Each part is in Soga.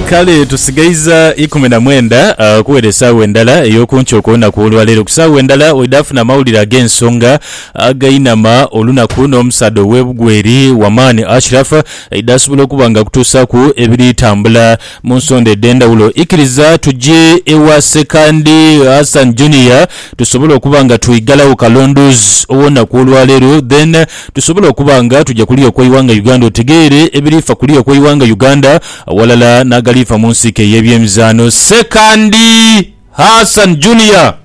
Kale tusigaiza ikumi na mwenda okuwera esaawa endala ey'oku nkya okw'olunaku olwaleero. Ku saawa endala oidhaafuna amawulire ag'ensonga againama olunaku n'omusaadha ow'ebugweri Wamani Ashraf aidhaasobola okuba nga akutuusaaku ebiri tambula mu nsonda edh'endhawulo. Ikiriza tuje ewa Sekandi Hassan Junior tusobole okuba nga twigalagho kalondoozi ow'olunaku olwaleero then tusobola okuba nga tuja ku lyo kw'eighanga Uganda otegeere ebiriifa ku lyo kw'eighanga Uganda aghalala n'agaliifa mu nsiike ey'ebyemizaano. Sekandi Hassan Junior.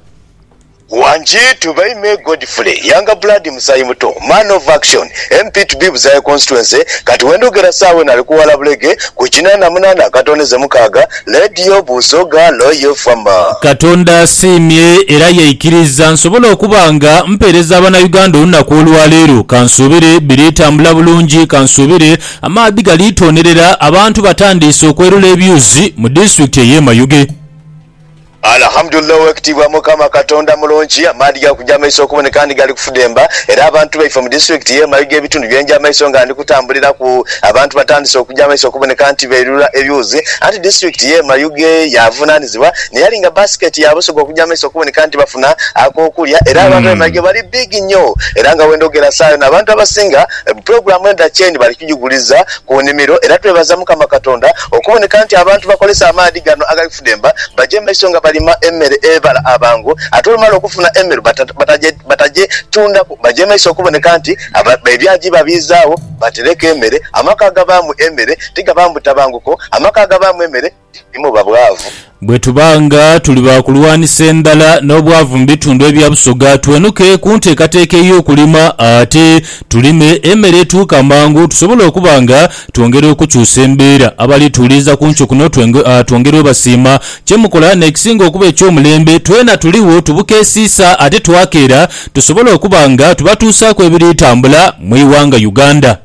Wanjiitu by Me Godfrey Youngblood Musaayi Muto Man of Action MP to be Buzaye Constituency Kati wendhogera saawa eno ali ku Wala Bulege ku kinaana munaana akatooneze mukaaga, Leediyo buuzo ghano y'ova ma? Katonda asiimye era yaikiriza nsobole okuba nga mpeereza Abanayuganda olunaku olwaleero. Kansuubire biri tambula bulungi. Kansuubire amaadhi gali toonerera. Abantu batandiise okwerula ebyuzi mu disitulikiti ey'e Mayuge. Alhamdulillah owekitiibwa mukama katonda mulungi amaadhi gakuja maiso okuboneka ni gali kufudemba era abantu baife mu district ye Mayuge ebitundu byenja maiso nga ndi kutambuliraku abantu batandise okuja maiso okuboneka nti beilula ebyuzi anti district ye Mayuge yavunanizibwa neyali nga basket ya busoga okuja maiso okuboneka nti bafuna akokulya era abantu be Mayuge bali big nyo era nga wendhogera saha yona abantu abasinga program endha chain bali kujiguliza ku nimiro era twebaza mukama katonda okuboneka nti abantu bakolesa amaadhi gano agali Basidemba baja emaiso nga balima emere ebala abangu ate olumala okufuna emeru batajetundaku baja emaiso okuboneka nti ebyagi babiizaawo batereku emere. Amaka agabaamu emere tigabaamu butabanguko, amaka agabaamu emere timuba bwavu. Bwetuba nga tuli ba kulwanisa endhala n'obwavu mu bitundu ebya Busoga twenuke ku nteekateeka ey'okulima ate tulime emere etuuka mangu tusobole okuba nga Twongere okukyusa embeera abali tuwuliriza ku nkyo kuno twongere obasiima. Kyemukola n'ekisinga okuba eky'omulembe twena tuligho tubukeesiisa ate twakeera tusobole okuba nga tubatuusaaku ebiri tambula mu ighanga Uganda.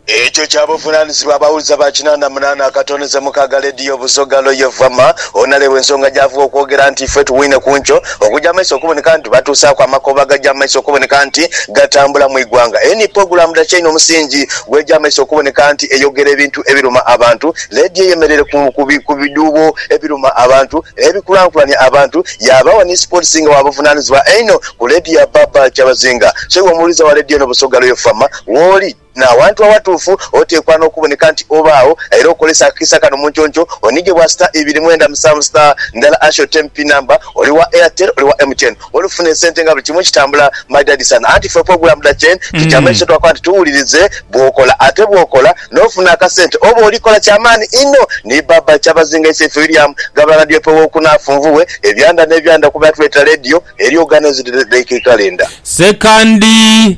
Ekyo kya buvunanizibwa abawuliza ba kinanda munana akatondeze mukaga lediyo Busoga Loye Vama onalebwa ensonga gyavuga okwogera nti ife tuwine ku nkyo. ogugya mu maiso okuboneka nti batuusaaku amakovu agagya mu maiso okuboneka nti gatambula mu igwanga. Eni pulogulaamu Dakyaine omusingi gw'egya mu maiso okuboneka nti eyogera ebintu ebiruma abantu. Leediyo eyemereire ku bidhuubo ebiruma abantu n'ebikulankulania abantu. Yaabaawo ni sipootisi nga wa buvunaanizibwa einho ku leediyo ya Barbara Kyabazinga. So iwe omuwuliza wa leediyo eno Busoga Royal FM, wooli? N'awantu awatuufu oteekwa n'okuboneka nti obaagho era okozesa akakiisa kano mu nconco onhige bwa star ibiri mwenda musanvu star ndala hash oteemu pin number oli wa Airtel oli wa MTN oli kufuna esente nga buli kimu kitambula my daddy son anti ffe okwegula muda chain kikyama ekyo kyetwakola nti tuwulirize bw'okola ate bw'okola n'ofuna akasente oba oli kola ky'amaani inho ni Baba Kyabazinga ise ife William gaba radio pe w'okuna afunvubwe ebyanda n'ebyanda kuba yatuleetera radio eri organised like a calendar. Ssekandi.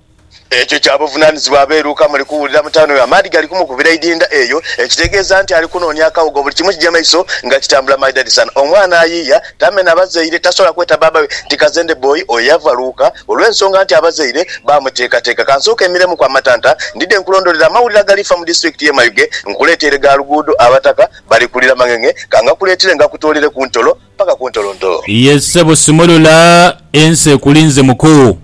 Ekyo kya buvunaanizibwa bwe Luka muli kuwulira mu tawuni eyo. Amaadhi gali kumukubira idinda eyo, ekitegeeza nti ali kunoonia akawugo. Buli kimu kija maiso nga kitambula maidhadhi sana. Omwana ayiiya, tamena bazaire, tasobola kweta baaba we nti kazende bboyi. Oyo yava Luka olw'ensonga nti abazaire baamuteekateeka. Ka nsooke mmiremuku amatanta, ndidhe nkulondolere amawulire agali fa mu disiturikiti y'e Mayuge. Nkuleeteire gha luguudo abataka bali kulira mang'eng'e. Ka ngakuleetere ngakutoolere ku ntolo paka ku ntolontolo. Ye ssebo simulula, ensi ekulinze muku.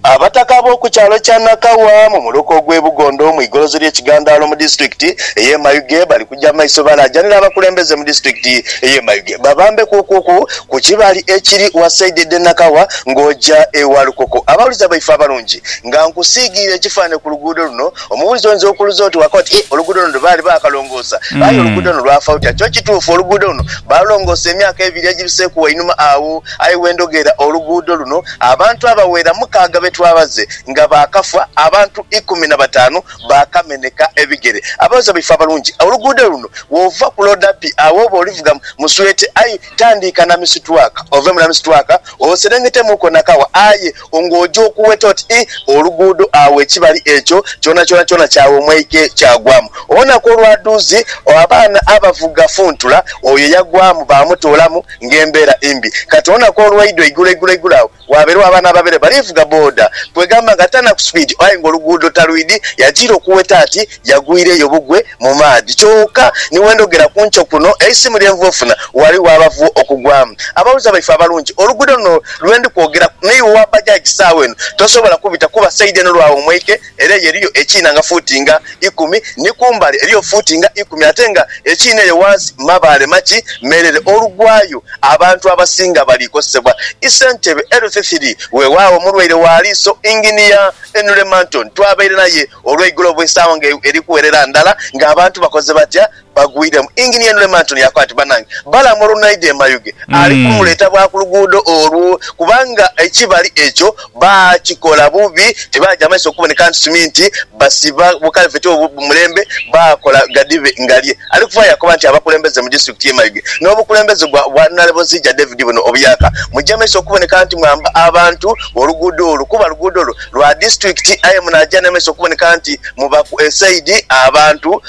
Abataka ab'oku kyalo kya Nakawa mu muluka ogw'e Bugondo mu igolozi ly'e Kigandaalo mu disitulikiti ey'e Mayuge bali kuja mu maiso balaajanira abakulembeze mu disitulikiti ey'e Mayuge babambeku okuku ku kibali ekiri wasaidi edh'e Nakawa ng'oja e Walukoko. Abawuliza baife abalungi, nga nkusiigiire ekifaanhe ku luguudo luno, omuwuliza oyinza okuuluza oti waka oti, Ih, oluguudo luno baali baakalongoosa. Aye oluguudo luno lwafa lutya? Kyo kituufu, oluguudo luno baalulongoosa emyaka ebiri egibiseeku wainuma agho. Aye we ndhogera oluguudo luno Abantu abaghera mukaaga be twabaze nga baakafa, abantu ikumi na bataanu baakameneka ebigere. Abaweereza baife abalungi, oluguudo luno bw'ova ku Loda Pi agho oba olivuga mu Sweete, aye tandiika Namisitwaka, ove mu Namisitwaka oserengetemuuko Nakawa aye ng'oja okuweta oti ii oluguudo agho ekibali ekyo kyonakyona kyagha omwaike kyagwamu. Olunaku olwadhuuzi abaana abavuga funtula oyo yagwamu baamutoolamu. ng'embeera imbi. Kati olunaku olwaidwa eigulo eigulo eigulo agho waabeerwa abaana ababeere bali vuga boda kwegamba nga tanaku speed aye nga oluguudo talwidi yajiira okuweta ati yagwiireyo bugwe mu maadhi kyoka ni wendhogera ku nkyo kuno eisimu lye nvuu ofuna wali waabavuu okugwamu. Abaghuliriza baife abalungi oluguudo luno lwendi kwogeraku n'iwe owa bajaji saagho eno tosobola kubita kuba side eno lwaawumweike. Era eyo eriyo ekiina nga fuuti nga ikumi ni ku mbali eriyo fuuti nga ikumi, ate nga ekiina eyo ghansi mabaale maki meerere. Olugwayo abantu abasinga bali kozesebwa i sentebe eluthi thiri. Weewaawo omulwaire wa liiso Inginiya Henry Manton twabaire naye olweigulo bw'esaawa nga eri kuwerera ndala nga abantu bakoze batya bagwiremu. Engineer Nurem Antony yakoba nti, Banange, Balaam olunaidha e Mayuge ali kumuleeta bwa ku luguudo olwo kubanga ekibali ekyo baakikola bubi, tibaaja maiso kuboneka nti suminti basiba bukalveti obwo bu mulembe, baakola ghadhibe ngalye. Ali kuvaayo yakoba nti, Abakulembeze mu disitulikiti y'e Mayuge n'obukulembeze gwa Bwanalebozija David buno obuyaka, muje maiso okuboneka nti mwamba abantu oluguudo olwo kuba luguudo lwa disitulikiti aye munaaja n'amaiso okuboneka nti mubaku esaidi abantu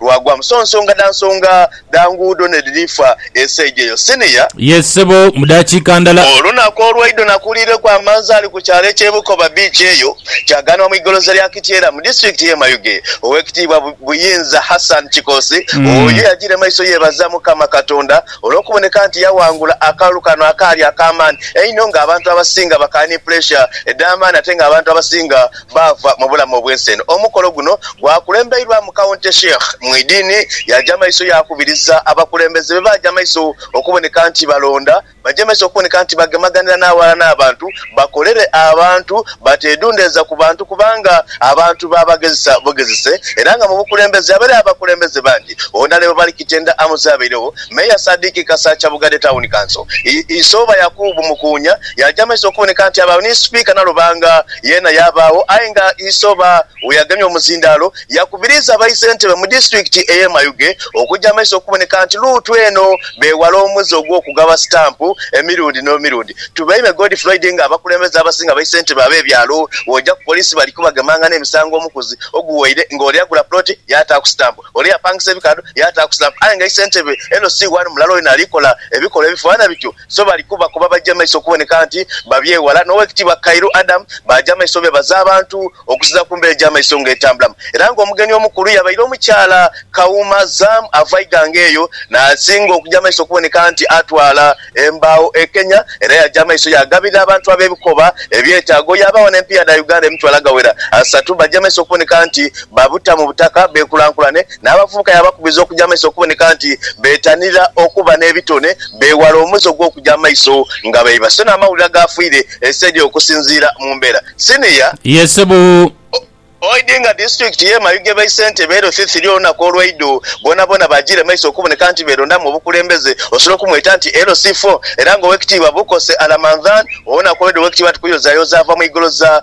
Lwagwa mu sonsonga dha nsonga dha nguudo n'edhirifa esaidhi eyo. Senior. Yes ssebo, mu daakiika ndala. Olunaku olwaidho nakuliireku amanzaali ku kyalo eky'e Bukoba Beach eyo kyagaanibwa mu igoloza lya Kityera mu disitulikiti y'e Mayuge. Ow'ekitiibwa Buyinza Hassan Kikoosi oyo yajiire maiso yeebaza Mukama Katonda olw'okuboneka nti yawangula akalulu kano akaali ak'amaani einho ng'abantu abasinga bakaali ni puleesha edh'amaani ate ng'abantu abasinga baava mu bulamu obw'ensi eno. Omukolo guno gwakulembeirwamu County Sheikh Mwidini yaaja maiso yaakubiriza abakulembeze be baaja maiso okuboneka nti balonda baje maiso okuboneka nti bagemaganira n'aghalala n'abantu bakolere abantu bateedundeeza ku bantu kubanga abantu baabagezesa bugezese era nga mu bukulembeze abere abakulembeze bangi Wonalebo Bali Kitenda Amuze Abairegho Mayor Sadiq Kasakya Bugadhe Town Council Isooba Yakubu Mukuunya yaaja maiso okuboneka nti abaawo ni Sipiika Nalubanga Yeena yaabaagho aye nga Isoba we yagemye omuzindaalo, yakubiriiza abaisentebe mu disitulikiti ey'e Mayuge okuja amaiso okuboneka nti luutu eno beewala omuze ogw'okugaba sitampu emirundi n'emirundi. Tubeime Godfroid nga abakulembeze abasinga baisentebe ab'ebyalo bw'oja ku poliisi bali kubagemanga n'emisango omukuzi oguwaire nga ole yagula puloti yaataaku sitampu, ole yapangisa ebikaadho yaataaku sitampu aye nga isentebe LC1 mulala olina ali kola ebikolwa ebifaana bityo. So bali kuba, kuba baja maiso okuboneka nti babyewala. N'Owekitiibwa Kairu Adam baaja maiso beebaza abantu okusiza ku mbeera egy'amaiso nga etambulamu era nga omugeni omukulu yabaire omukyala Kawuma Zam ava Iganga eyo naasinga okuja maiso okuboneka nti atwala embaawo e Kenya era yaja maiso yaagabirira abantu ab'ebikoba ebyetaago yaabagho n'empiiya dha Uganda emitwalo agawera asatu baje maiso okuboneka nti babuta mu butaka beekulankulane N'abavubuka yaabakubiriza okuja amaiso okuboneka nti beetanira okuba n'ebitone, beewale omuze ogw'okuja amaiso nga baiba so n'amawulire agaafiire ensi edyo okusinziira mu mbeera. Siniya. Ye sebo. Oidhi nga disitulikiti y'e Mayuge bae Ssentebe ere othithiri olunaku olwaidho boonaboona baajiire maiso okuboneka nti beerondamu obukulembeze osobola okumweta nti LC4 era nga Owekitiibwa Bukose Alamandhan olunaku olwaidho Owekitiibwa Tukuyozayoza ava mu igoloza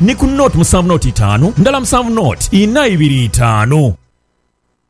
ni ku nought musanvu nought itaanu ndala musanvu nought inha ibiri itaanu.